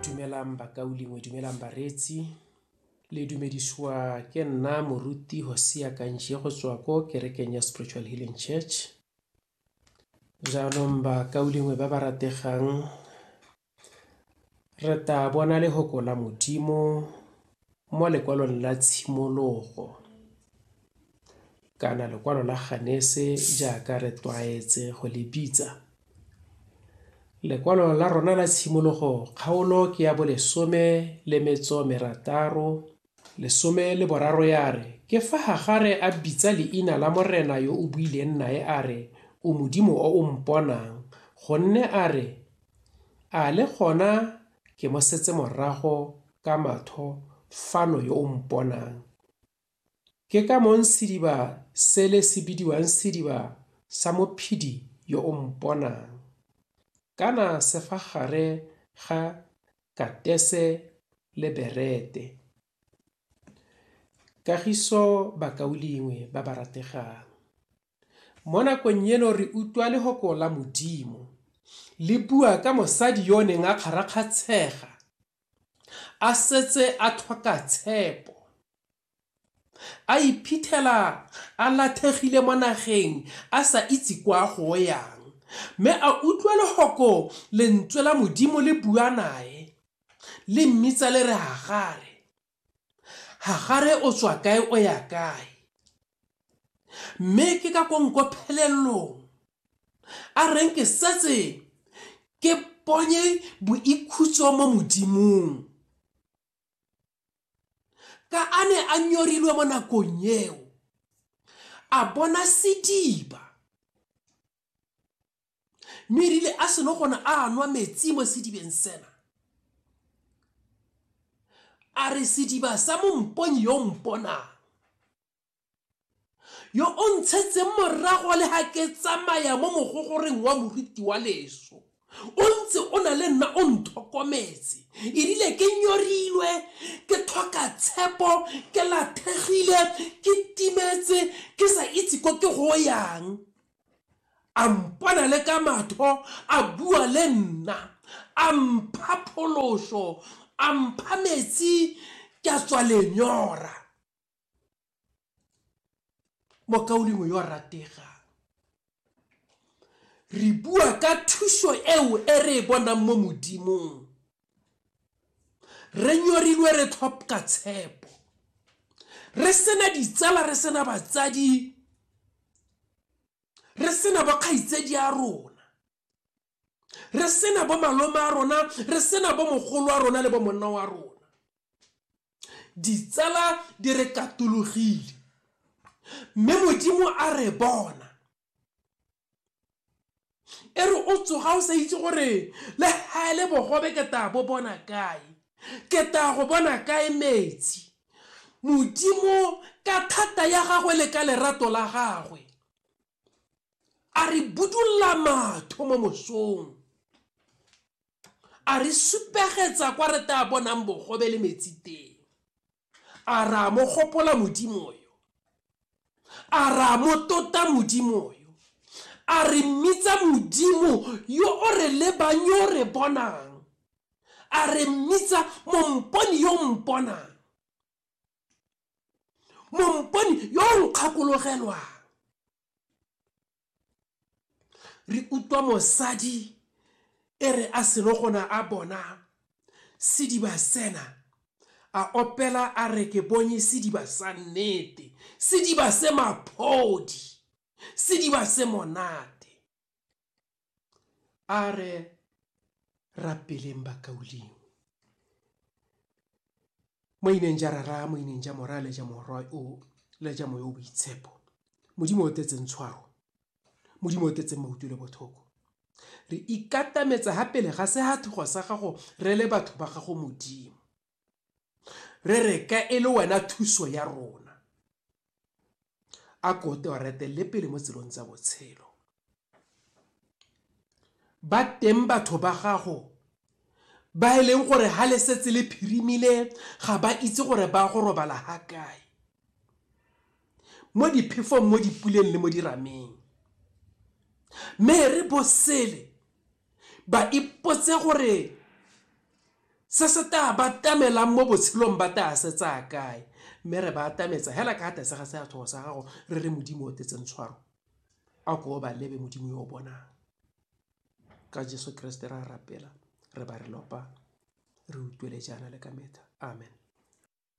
dumelang bakaulengwe dumelang bareetsi le dumedisiwa ke nna moruti hosea kanje go tswa ko kerekeng ya spiritual healing church jaanong bakaulengwe ba ba rategang re ta bona lehoko la modimo mo lekwalong la tshimologo kana lekwalo la ganese jaaka re tlwaetse go le bitsa. Lekwalo la rona la tshimologo kgaolo ke ya bolesome le metso merataro lesome le boraro ya re ke fa gagare a bitsa leina la morena yo o buileng nae a re o modimo o o mponang gonne a re a le gona ke mo setse morago ka matho fano yo o mponang Ke ka mong sediba sele se bidiwang sediba sa Mophedi yo o mponang, kana se fa gare ga Katese le Berete. Kagiso Bakaulengwe ba ba rategang, mo nakong eno re utlwa lehoko la Modimo le bua ka mosadi yo o neng a kgarakgatshega a setse a tlhoka tshepo, a iphitlhela a lathegile mo nageng a sa itse kwa a go yang, mme a utlwa lehoko lentswe la Modimo le bua nae, le mmitsa le re Hagare. Hagare o tswa kae o ya kae, mme ke ka ko nko phelelong a reng ke setse ke ponye boikhutso mo Modimong. Ka a ne a nyorilwe mo nakong eo, a bona sediba. Mme erile a seno gona a nwa metsi mo sedibeng sena, a re sediba sa momponyi yo mponang, yo o ntshetseng morago le ga ke tsamaya mo mogogoreng wa moriti wa leso, o ntse o na le nna o nthokometse, erile ke nyorilwe, ke tlhoka tshepo, ke lathegile, ke timetse, ke sa itse ko ke go yang. a mpona le ka matho a bua le nna a mpha pholoso a mpha metsi ke a tswa lenyora mokaulengwe yo ratega re bua ka thuso eo e re e bonang mo modimong re nyorilwe re tlhopka tshepo re sena ditsala re sena batsadi re sena bokgaitsedi a rona re sena bo malome a rona re sena bo mogolo wa rona le bo monna wa rona ditsala di re katologile mme modimo a re bona e re o tsoga o sa itse gore le ga e le bogobe ke taya bo bona kae ke taya go bona kae metsi modimo ka thata ya gagwe le ka lerato la gagwe a re budulla matho mo mosong a re supegetsa kwa re taya bonang bogobe le metsi teng A ra mo gopola Modimo yo? A ra mo tota Modimo yo? A re mmitsa Modimo yo o re lebang yo o re bonang? A re mmitsa momponi yo o mponang? Momponi yo o nkgakologelwang? re utlwa mosadi e re a seno gona a bona sediba sena a opela a re ke bonye sediba sa nnete sediba se maphodi sediba se monate a re rapeleng bakauleng mo ineng ja rara mo ineng ja mora le ja morwa o le ja moyo o boitshepo modimo o tetseng tshwaro modimo o tetseng mautu le bothoko re ikatametsa ga pele ga sehathogo sa gago re le batho ba gago modimo re reka e le wena thuso ya rona a ko te wa retelele pele mo tselong tsa botshelo ba teng batho ba gago ba e leng gore ha le setse le phirimile ga ba itse gore ba go robala ha kae mo diphefong mo dipuleng le mo dirameng mme re bosele ba ipotse gore se se tla ba tamelang mo botshelong ba tla se tsaya kae mme re ba atametsa hela ka tlase ga seathogo sa gago re re modimo o tetseng tshwaro a ko ba lebe modimo yo o bonang ka jesu kreste ra rapela re ba re lopa re utlwele jaana le ka metlha amen